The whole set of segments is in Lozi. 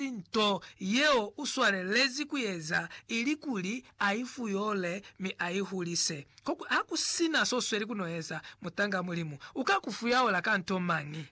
Ki nto yeo u swalelezi ku eza, ilikuli a i fuyole mi a i hulise. Koku ha ku si na s'o sweli ku n'o eza, mutanga Mulimu u ka ku fuyaola ka nto mañi?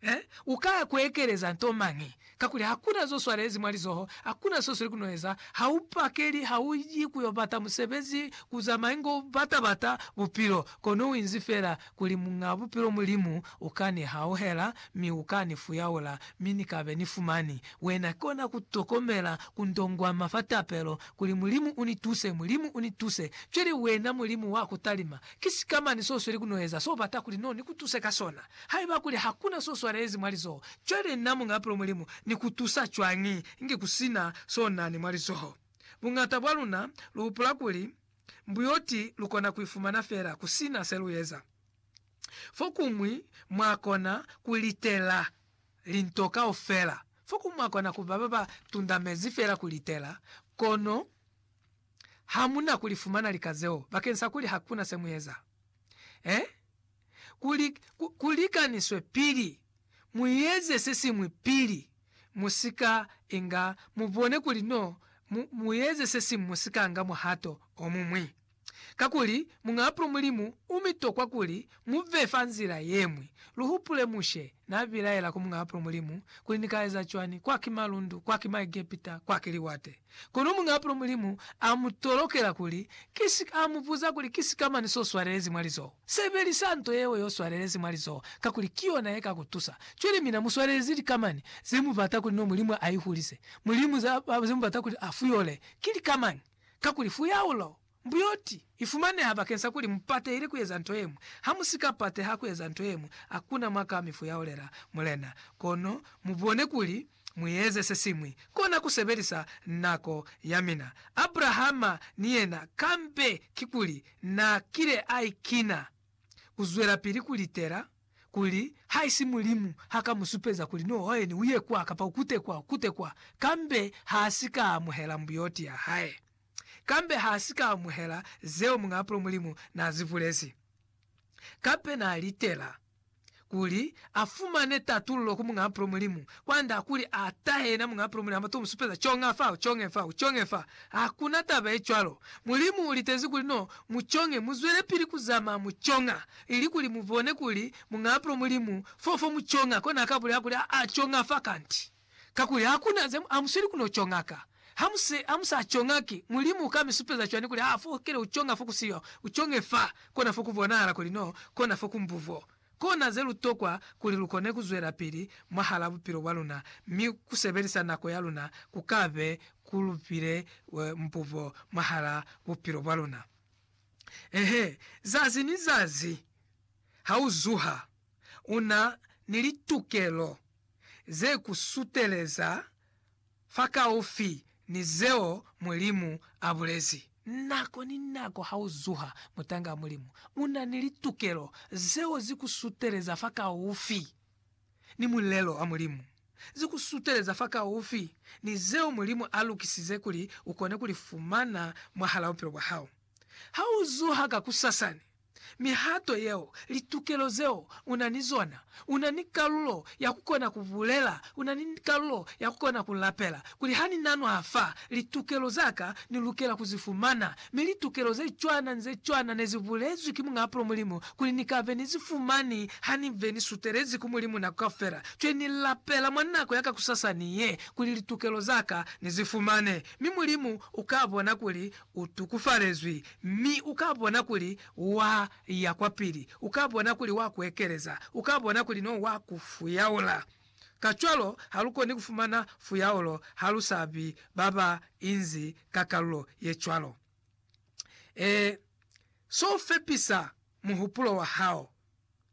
He, u ka ku ekeleza nto mañi? Kakuli ha ku na z'o swalelezi mwa lizoho, ha ku na s'o sweli ku n'o eza, ha u pakeli, ha u yi ku y'o bata musebezi, ku zamayi ng'o bata-bata bupilo, kono u inzi fela Kuli Muñ'a Bupilo Mulimu u ka ni hauhela, mi u ka ni fuyaula, mi ni ka be ni fumani Wena. Ki kona ku tokomela ku ndongwama fa tapelo, kuli, Mulimu u ni tuse, Mulimu u ni tuse. Cwale, Wena Mulimu wa ku talima, ki sikamañi so sweli ku no eza so bata kuli no ni ku tuse ka sona? Haiba kuli ha ku na so swalelezi mwa lizoho, cwale nna Muñ'a Bupilo Mulimu ni ku tusa cwañi inge ku si na so na ni mwa lizoho? Buñata bwa luna lu hupula kuli, Mbuyoti lukona kuifumana feela kusina selueza. Fokuñwi mwakona kulitela linto kaufela, fokuñwi mwakona kuba baba tundamezi feela kulitela, kono hamuna kulifumana lika zeo bakeng sa kuli hakuna semueza. Eh? kuli ku likaniswe pili, mu eze se siñwi pili, mu si ka inga, mu bone kuli no, mu, mu eze se siñwi mu si ka nga muhato o muñwi. Kakuli, Muñaapulo Mulimu u mi tokwa kuli mu ve fa nzila ye ñwi. Lu hupule Mushe n'a bilaela ku Muñaapulo Mulimu kuli, Ni ka eza cwani? Kwa ki malundu, kwa ki Maegepita, kwa ki liwate. Kono muñaapulo Mulimu a mu tolokela kuli ki si ka, a mu buza kuli ki sikamani so swalelezi mwa lizoho. Sebelisa nto yeo yo swalelezi mwa lizoho, kakuli ki yona ye ka ku tusa. Cwale mina mu swalelezi likamani ze mu bata kuli no Mulimu a ihulise, Mulimu ze, ze mu bata kuli a fuyole. Ki likamani, kakuli fuyaulo Mbuyoti ifumaneha bakeng sa kuli mupatehile kueza nto yeñwi. Hamusika pateha kueza nto yeñwi, hakuna mwa ka mi fuyahulela Mulena. Kono mubone kuli mueze sesiñwi, kona kusebelisa nako yamina. Abrahama ni yena, kambe kikuli naakile aikina kuzwelapili kulitela kuli haisi Mulimu haka musupeza kuli, No hoheni, uye kwa, kapa ukute kwa, ukute kwa, kambe haasika amuhela mbuyoti yahae. kambe ha si ka amuhela zeo Muñaapulo Mulimu n'a zi bulezi. Kape n'a litela kuli a fumane tatululo ku Muñaapulo Mulimu, kwa nda kuli a tahe yena Muñaapulo Mulimu hama to mu supeza conga fa, conge fa, conge fa. Ha ku na taba ye cwalo. Mulimu u litezi kuli no mu conge, mu zwelepili ku zamaya mu conga, ili kuli mu bone kuli Muñaapulo Mulimu fo fo mu conga. Kona a ka bulela kuli, Aa, conga fa kanti. Kakuli hakuna ze mu amusweli ku no conga ka. Ha mu se, ha mu sa conga ki, Mulimu uka mi supeza cwani kuli ha fokele u conga fo ku siyo? U conge fa, kona fo ku bonahala kuli no kona fo ku mbuvo. Kona ze lu tokwa kuli lu kone ku zwelapili mwahala bupilo bwa luna, mi ku sebelisa nako ya luna ku ka be ku lu pile mbuvo mwahala bupilo bwa luna. Eehe, zazi ni zazi ha u zuha, u na ni litukelo ze ku suteleza fakaufi ni zeo Mulimu a bulezi. Nako ni nako ha u zuha mutanga wa Mulimu, u na ni litukelo zeo zi ku suteleza fakaufi ni mulelo wa Mulimu, zi ku suteleza fakaufi ni zeo Mulimu a lukisize kuli u kone ku li fumana mwahal'a bupilo bwa hao. Ha u zuha kakusasani, mihato yeo, litukelo zeo u na ni zona. U na ni kalulo ya ku kona ku bulela, u na ni kalulo ya ku kona ku lapela, kuli, Ha ni na nwa fa, litukelo za ka ni lukela ku zi fumana. Mi litukelo ze cwana ni ze cwana ne zi bulezwi ki Muñ'a Pulo Mulimu, kuli ni ka be ni zi fumani ha ni be ni sutelezi ku Mulimu nako kaufela. Cwe ni lapela mwa nako ya kakusasani ye, kuli litukelo za ka ni zi fumane. Mi Mulimu u ka bona kuli U tukufalezwi, mi u ka bona kuli wa ya kwapili, u ka bona kuli wa ku ekeleza, u ka bona kuli no wa ku fuyaula. Kacwalo, ha lu koni ku fumana fuyaulo ha lu sa bi ba ba inzi ka kalulo ye cwalo. Ee, so u fepisa muhupulo wa hao,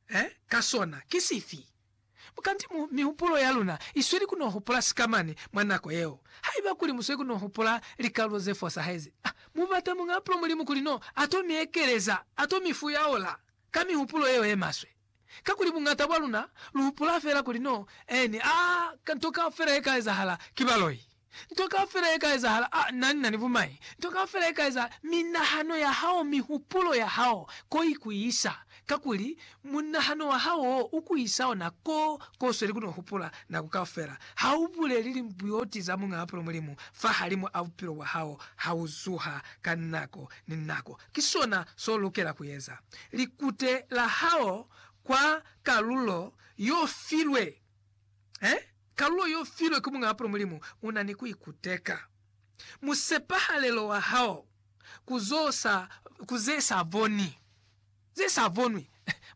eh, ka sona ki sifi? Kanti mu mihupulo ya luna i sweli ku no hupula sikamani mwa nako yeo. Haiba kuli mu sweli ku no hupula likalulo ze fosahezi, a mu bata Muñ'a Pulo Mulimu kuli no a to mi ekeleza, a to mi fuyaula ka mihupulo yeo ye maswe. Kakuli buñata bwa luna lu hupula fela kuli no eni a nto kaufela ye ka ezahala ki baloi. Nto kaufela ye ka ezahala, a na ni na ni bumai. Nto kaufela ye ka ezahala, minahano ya hao, mihupulo ya hao, ko i ku isa. Kakuli, munahano wa hao wo u ku isa ona ko, ko u sweli ku no hupula, nako kaufela. Ha u buleli limbuyoti za Muñaa Pulo Mulimu fahalimu a bupilo bwa hao ha u zuha ka nako ni nako. Ki sona so lukela ku eza. Likute la hao kwa kalulo yo filwe He, kalulo y'o filwe ku Muñaa Pula Mulimu u na ni ku ikuteka. Musepahalelo wa hao ku z'o sa, ku ze sa boni, ze sa bonwi.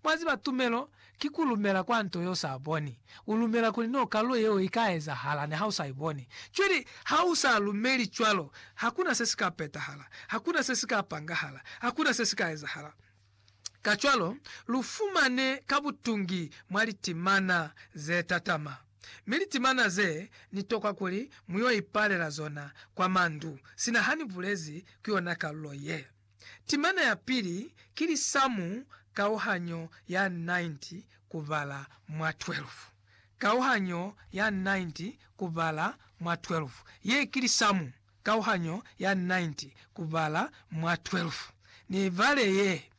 Mwa ziba, tumelo ki ku lumela kwa nto ye u sa boni. U lumela kuli n'o kalulo yeo i ka ezahala niha u sa i boni. Cwale ha u sa lumeli cwalo, ha ku na se si ka petahala, ha ku na se si ka pangahala, ha ku na se si ka ezahala. Kacwalo, lu fumane ka butungi mwa litimana ze tatama, mi litimana ze ni tokwa kuli mu yo ipalela zona kwa mandu, sina ha ni bulezi ku yona kalulo ye. Timana ya pili ki lisamu kauhanyo ya 90 kubala mwa 12. Kauhanyo ya 90 kubala mwa 12 ye ki lisamu kauhanyo ya 90 kubala mwa 12. Niibale ye.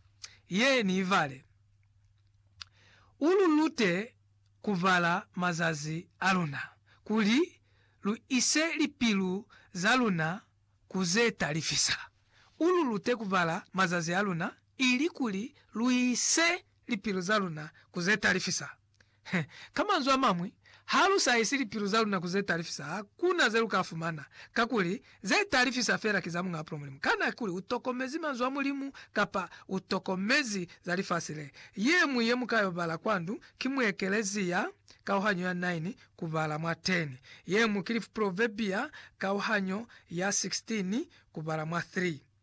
Ye niibale. U lu lute kubala mazazi a luna, kuli lu ise lipilu za luna ku ze talifisa. U lu lute kubala mazazi a luna, ili kuli lu ise lipilu za luna ku ze talifisa. Ka manzwi a mañwi, ha lu sa isi lipilu za luna ku ze talifisa, ha ku na ze lu ka fumana, kakuli, ze talifisa fela ki za Muñ'a Bupilo Mulimu. Kana kuli u tokomezi Manzwi a Mulimu, kapa u tokomezi za lifasi le? Ye ñwi ye mu ka yo bala kwa ndu, ki mwa ekelezia, kauhanyo ya 9, ku bala mwa 10. Ye ñwi ki Lifupulovebia, kauhanyo ya 16, ku bala mwa 3.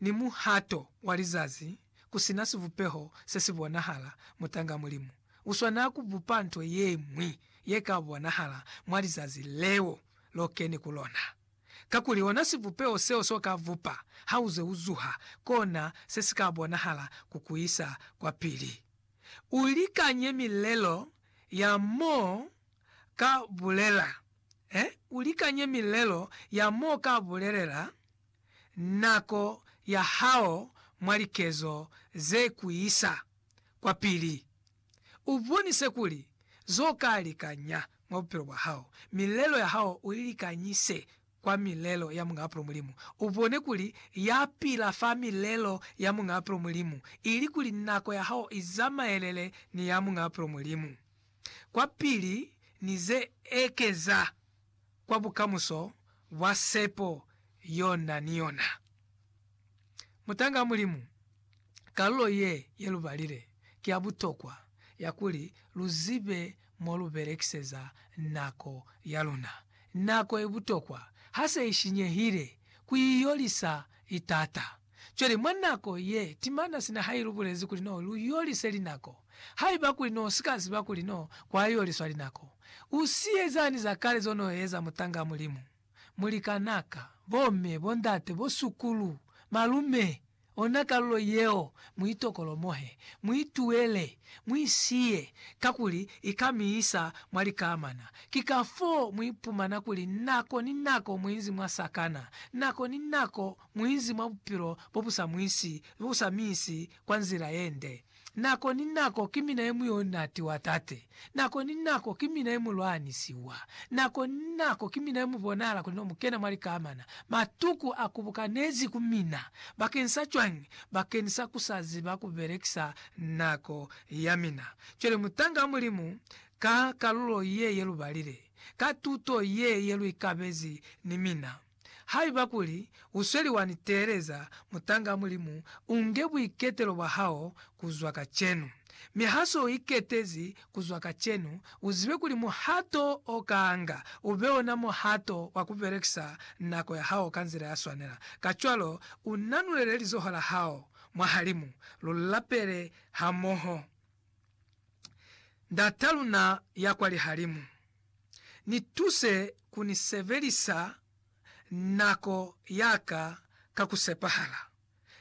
ni muhato wa lizazi ku si na sibupeho se si bonahala, mutanga Mulimu u swanela ku bupa nto ye ñwi ye ka bonahala mwa lizazi leo lo keni ku lona. Kakuli ona sibupeho seo s'o ka bupa ha u ze u zuha, kona se si ka bonahala ku ku isa kwapili. U likanye milelo ya m'o ka bulela. Ee, u likanye milelo ya m'o ka bulelela. nako ya hao mwa likezo ze ku isa kwapili. U bonise kuli zo ka likanya mwa bupilo bwa hao. Milelo ya hao u i likanyise kwa milelo ya Muñ'a Bupilo Mulimu. U bone kuli ya pila fa milelo ya Muñ'a Bupilo Mulimu, ili kuli nako ya hao i zamaelele ni ya Muñ'a Bupilo Mulimu kwapili ni ze ekeza. kwa bukamuso bwa sepo yo na ni yona. Mutanga Mulimu, kalulo ye ye lu balile ki ya butokwa ya kuli lu zibe mo lu belekiseza nako ya luna. Nako i butokwa ha se i shinyehile ku i yolisa i tata. Cwale, mwa nako ye timana sina ha ilubulezi kuli no lu yolise linako, haiba kuli no si ka ziba kuli no kwa yoliswa linako, u siyezani za kale zo no eza mutanga Mulimu? Mulikanaka, bomme, bondate, bosukulu, malume, ona kalulo yeo, mu itokolomohe, mu ituele, mu isiye, kakuli i ka mi isa mwa likamana. Ki kafoo mu ipumana kuli nako ni nako mu inzi mwa sakana, nako ni nako Muinzi mwa bupilo bo bu sa mwisi, bo bu sa mi isi kwa nzila ye nde. Nako ni nako ki mina ye mu yo natiwa Tate. Nako ni nako ki mina ye mu lwanisiwa. Nako ni nako ki mina ye mu bonahala kuli no mu kena mwa likamana. Matuku a kubukanezi ku mina. Bakeni sa cwañi? Bakeni sa ku sa ziba ku belekisa nako ya mina. Cwale mutanga wa Mulimu, ka kalulo ye ye lu balile, ka tuto ye ye lu ikabezi ni mina, Haiba kuli u sweli wa ni teeleza, mutanga Mulimu, u nge buiketelo bwa hao ku zwa kacenu. Mi ha se u iketezi ku zwa kacenu, u zibe kuli muhato o kanga u be ona muhato wa ku belekisa nako ya hao ka nzila ya swanela. Kacwalo, u nanulele lizoho la hao mwahalimu, lu lapele hamoho. Ndat'a luna ya kwa lihalimu. Ni tuse ku ni sebelisa nako ya ka ka ku sepahala.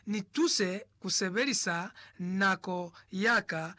Ni tuse ku sebelisa nako ya ka ka.